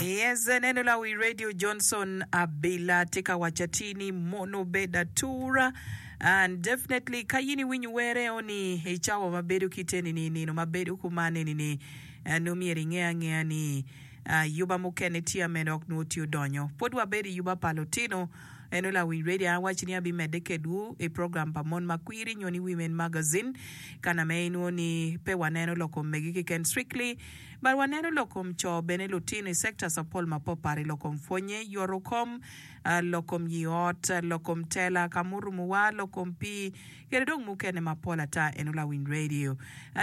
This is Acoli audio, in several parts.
Yes, neno la wi Radio Johnson Abila tye ka waco atir ni mono obedo atura. And definitely ka in iwinyo were o ni i cawa ma bedo kite ni ni nino ma bedo kuman eni ni ah, nongo myero inge angeya ni ah, yuba mukene tye ma en ok nongo tye odonyo. Pud wabedo i yuba pa lutino. Eno la wi Radio an awaco ni abimedde kedwu i program pa Mon ma Kwiri nyo ni Women Magazine ka na ma inongo ni pe waneno lok omege keken strictly Bad waneno lok kom co bene lutino i sectors mapol mapatpat i lok kom pwonye, yoto kom, lok kom yii ot, lok kom tela ka murumu wa, lok kom pii kede dong mukene mapol ata eno lawiny radio.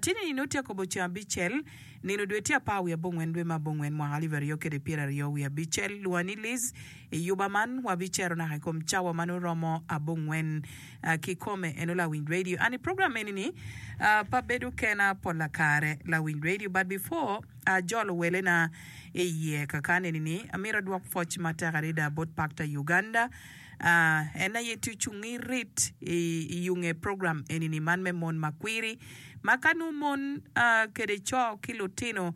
Tye ni nino tye akobo ceng abicel, nino dwe tye apar wiye abongwen dwe me abongwen mwaka alip aryo kede pyera aryo wiye abicel, lwonga ni Liz, i yuba man wabi cero naka i kom cawa ma nongo romo abongwen Kikome eno lawiny radio and program eni ni pa bedo kena pol lakare lawiny radio but before a jolo wele na iye kakan eni ni amito adwok pwoc matek adada bot Pactor Uganda en aye tye ocungi rit iyunge program eni ni man me mon makwiri ma ka nongo mon kede coo ki lutino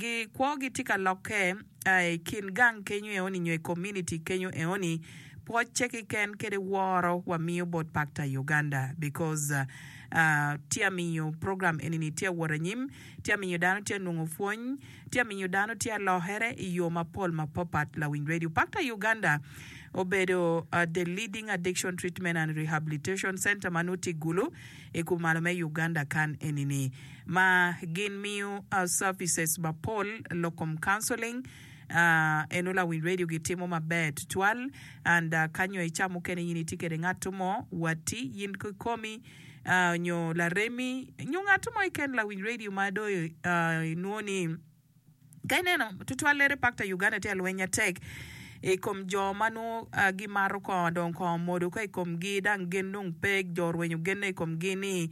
gi kwogi tye ka lokke a i kin gang kenyo eoni nyo i community kenyo eoni pwocce kiken kede woro wa miyo bot pakta i Uganda because tye a miyo program eni ni tye a wot anyim tye a miyo dano tye a nongo pwony tye a miyo dano tye a lokere i yo mapol ma pa pat lawiny radio pakta i Uganda obedo the leading addiction treatment and rehabilitation center ma nongo tye i gulu i kumalo me Uganda kan eni-ni ma gin miyo services mapol lok kom counseling ahh eno lawiny radio gi timo maber tutwal and ka nyo i ca mukene in itye kede ngat mo watti in ki komi ahh nyo laremi nyo ngat mo keken lawiny radio ma dong i nwo ni Ka ineno tutwallere pak ta Uganda tye alweny atek I kom jo ma nongo gi mato kongo dong kongo omodo ko I kom gi dang gen dong pe jo orwenyo genne I kom gi ni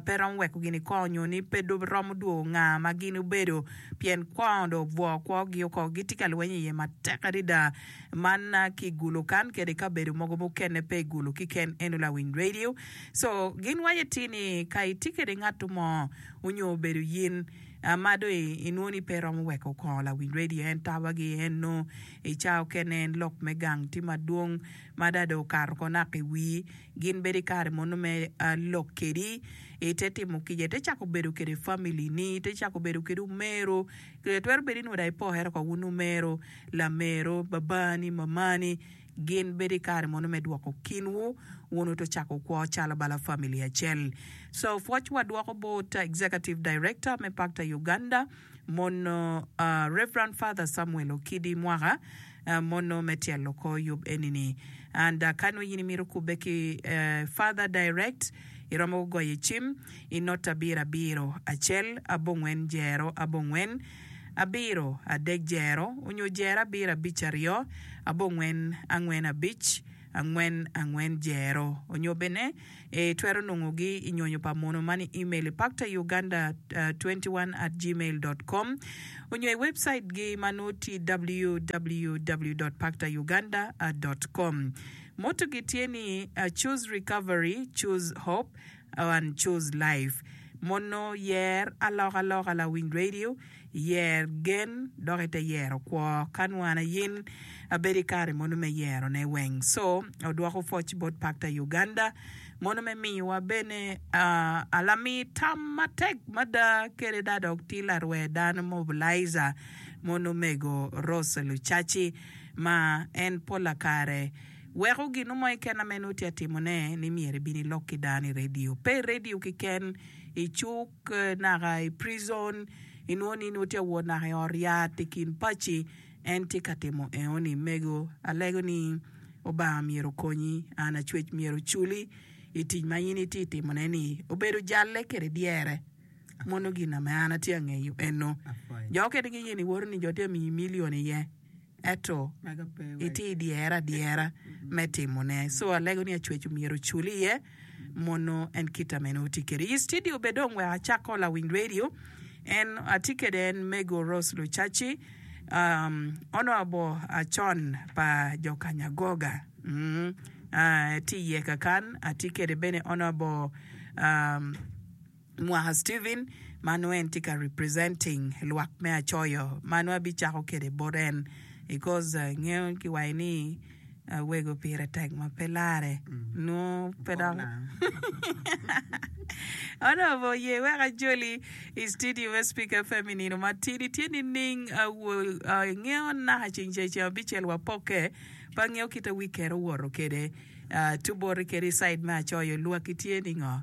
pe romo weko gini kongo nyo ni pe romo dwogo nga ma gin obedo pien kongo dong obwo kwo gi oko gi tye ka lweny I ye matek adada man ki gulu kan kede kabedo mogo mukene pe I gulu kiken eno lawiny radio so gin waco ti ni ka itye kede ngato mo onyo obedo yin ma do inwo ni pe iromo weko okongo lawiny radio en tawa gi en no i ca okene en lok me gang tye madwong ma ada do okato ko naka i wii gin bedo i kare mono me lok kedi ite timo kica ite cako bedo kede family ni ite cako bedo kede omero twero bedo inwo da ipokere ko wun omero lamero babani mamani Gin bedo i kare mono me dwoko kinwu wun uto cako kwo calo bala famili acel. So pwocwa dwoko bot Executive Director me Pakta Uganda mono Rev. Father Samuel Okidi mwaka mono me tyelo kor yub enini. And ka nongo in imito kubbe ki Father direct, iromo goyo cim i nota abiro abiro, acel, abongwen, jero, abongwen. abiro, adek jero, onyo jero abiro abic aryo, abongwen angwen abic, angwen angwen jero, onyo bene I twero nongo gi I nyonyo pa mono man I email I pakta Uganda twenty one at gmail dot com onyo I website gi ma noo ti www dot pakta Uganda dot com. Motto gi tye ni, Choose Recovery, Choose Hope. One Choose Life, Mono yer alokaloka lawiny radio, yer gen dok ite yero kwo. Ka nwo an ayin, abedo i kare mono me yero ne weng. So, odwoko foc bot Pakta Uganda, mono me miyowa bene a lami tam matek mada kede da dok ti larwer dano mobilizer mono omego Rose Lucaci ma en pola kare Weko gin mo keken ma meno tye ka timone ni myero ibin ilok ki dano i radio. Pe i radio keken, i cuk naka i prison inwongo ni nongo tye ka wot naka i ot yat i kin paci. En tye ka timo eno ni, Mego, alego ni Lubanga myero okonyi. An acwec myero oculi i tic ma in itye ka timone ni. Obedo jalle kwede dyere. Mono gin na ma an atye ka ngeyo eno. Jo mukene giye ni iwoto ni jo tye ka miyi milion iye. ento itye i dyere adyera me timone. So alego ni acwec omyero ocul iye mono en kita mene oti kede. I studio be dong wek acako lawiny radio en atye kede en mego Rose Lucaci um onobo acon pa jo kanyagoga mm ah etye iye kakan atye kede bene onobo um mwaka Steven ma nongo en tye ka representing lwak me Acoyo ma nongo abicako kwede bot en because ingeyo kiwaco ni wego pire tek ma pe larre nongo pe dok Onongo oye wek ajoli i studio me Speaker FM i nino matidi tye nining ingeyo naka ceng ca ceng abicel wapokke pe angeyo kite wic kere owoto kwede tuboti kede i side me Acoyo lwaki tye ningo?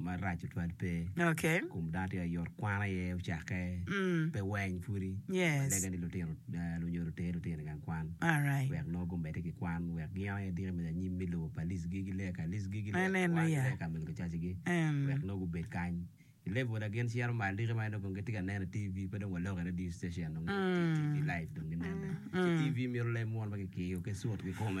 marac tutwal pe ikom dano tye ayot kwano aye ocake pe weng pwodi lega ni lutino lunyo luter lutino igang kwan wek nongo gumedde ki kwan wek gin aye diki me anyim me lobo pa Lic gigi lega ka Lic gigi lega ka kwan lega ka mege lucaci gi wek nongo gubed kany i level na gin cito malo diki ma nongo gitye ka neno i TV pe dong waloko i radio station dong TV live dong ginene ci TV mito leb munu ma kikiyo ki sut kikome.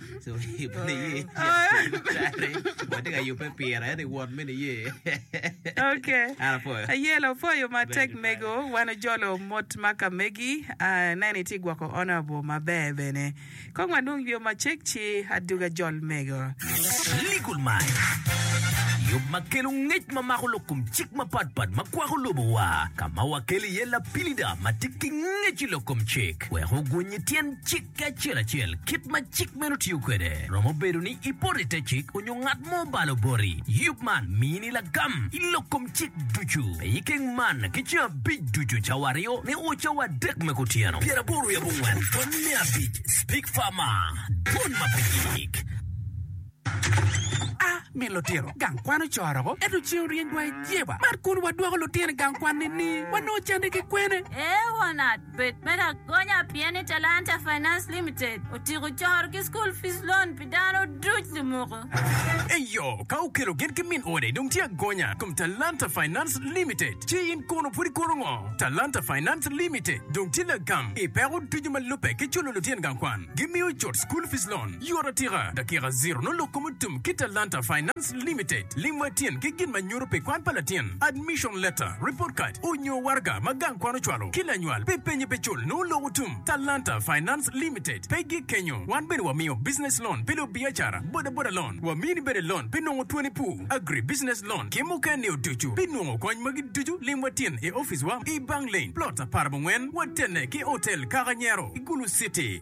Ayel opwoyo matek mego wan ojolo mot ma ka megi aneno itye gwoko honorable maber bene kong wanong yoo macek ci aduga jol mego. Legal Mind, yub ma kelo ngec ma mako lok kom cik mapatpat ma kwako lobowa, ka ma wakelo iye lapilida ma tye ki ngec i lok kom cik wek oguny i tyen cik. Ki acel acel kit ma cik meno otiyo kwede, romo bedo ni ipoto i te cik onyo ngat mo obalo boti. Yub man mini lagam i lok kom cik ducu. Pe ikeng man ki ceng abic ducu, cawa aryo ni o cawa adek me kutyeno. Pyeraboro i abongwen pwony me abic, Speak Farmer, Dwon ma pe yik. A. Mit lutino gang kwan ocoro ko, ento ceng oryeny dwai jeba. Mar kun wadwoko lutino i gang kwan ni ni wanongo cande ki kwene? Ewa nat. Bed me lagonya pien ni Talanta Finance Limited otyeko coro ki School Fees Loan pi dano duc lumoko. Eyo, ka okelo gin ki min ode dong tye agonya i kom Talanta Finance Limited. Ci in kono pud ikoto ngo? Talanta Finance Limited dong tye lagam i peko ducu ma lubbe ki culo lutyen gang kwan. Gimiyo cut School Fees Loan. Yor atika, dakika ziro nongo lok kom otum ki Talanta Finance Limited lim wa tyen ki gin ma nyuto pi kwan pa latin, admission letter, report card, onyo waraga ma gang kwan ocwalo ki lanywal pi penye pe cul nongo lok otum. Talanta Finance Limited pe gik kenyo, wan bene wamiyo business loan pi lubiacara, boda boda loan, wamini bene loan pi nongo twoni pu, agri business loan ki muken nio ducu. Pi nongo kony magi ducu lim wa tyen i office wa i Bang Lane, plot apar abongwen, watene ki hotel Kaka Nyero i Gulu City.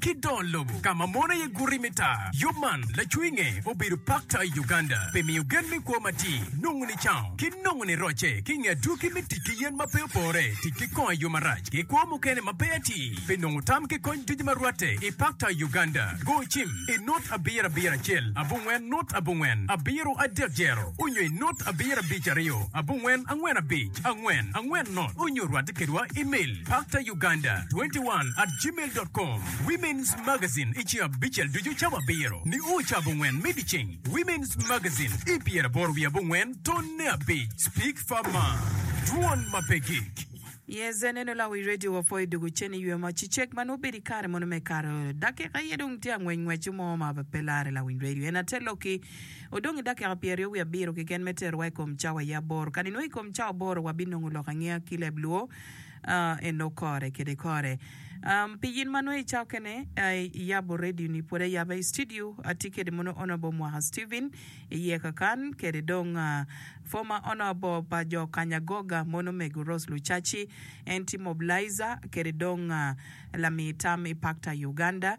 Ki dong lobo ka ma mono iye guti me taa. Yub man lacwinge obedo pakta i Uganda pi miyo gen me kwo matir, nongo nicango, ki nongo nirocce ki i nge adwogi me tic ki yen ma pe opore, tic ki kongo i yo marac, ki kwo mukene ma pe atir. Pi nongo tam ki kony ducu ma rwatte i pakta i Uganda, go cim i nut abiro abiro acel abongwen nut abongwen abiro adek jero, onyo i nut abiro abic aryo abongwen angwen abic. Lwak angwen angwen not onyo rwate kedwa email paktauganda 21 at gmail dot com Women's Magazine i ceng abicel ducu cabo abiro nio ca abongwen me dyeceng Women's Magazine i pyeraboro wiye abongwen tonne abic Speak Far Mar Dwon ma pe gik. Yes aneno lawi radio wa poi doko cen i ywe ma cicek ma nongo bedo i kare mono me kato dakika aye dong tye angwec ngwec mo ma pe lare lawiny radio en ate loki Odong ki dakika pyeraryo wiye abiro keken me terowa i kom cawa aye aboro. Kadi nongo i kom cawa aboro wabinongo lok angeya ki leb lwo eno kore kede kore. Pi in ma nongo icawa kene iyabo radio ni pwod ayaba i studio atye kede mono Honourable Mwaka Steven iye kakan kede dong Former Honourable pa jo kanya Goga mono Mego Rose Lucaci en tye Mobilizer kede dong lami tam i Pakta Uganda.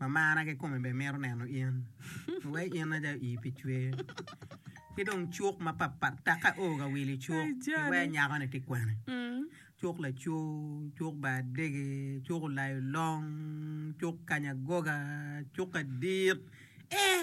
ma marra kikome bene mito neno in. Wai in aja ii pi cwer ki dong cuk mapatpat taka oo ka wili cuk iwee nyako ni tye kwene cuk lacoo cuk bar adege cuk olayo long cuk kanya goga cuk adit ee.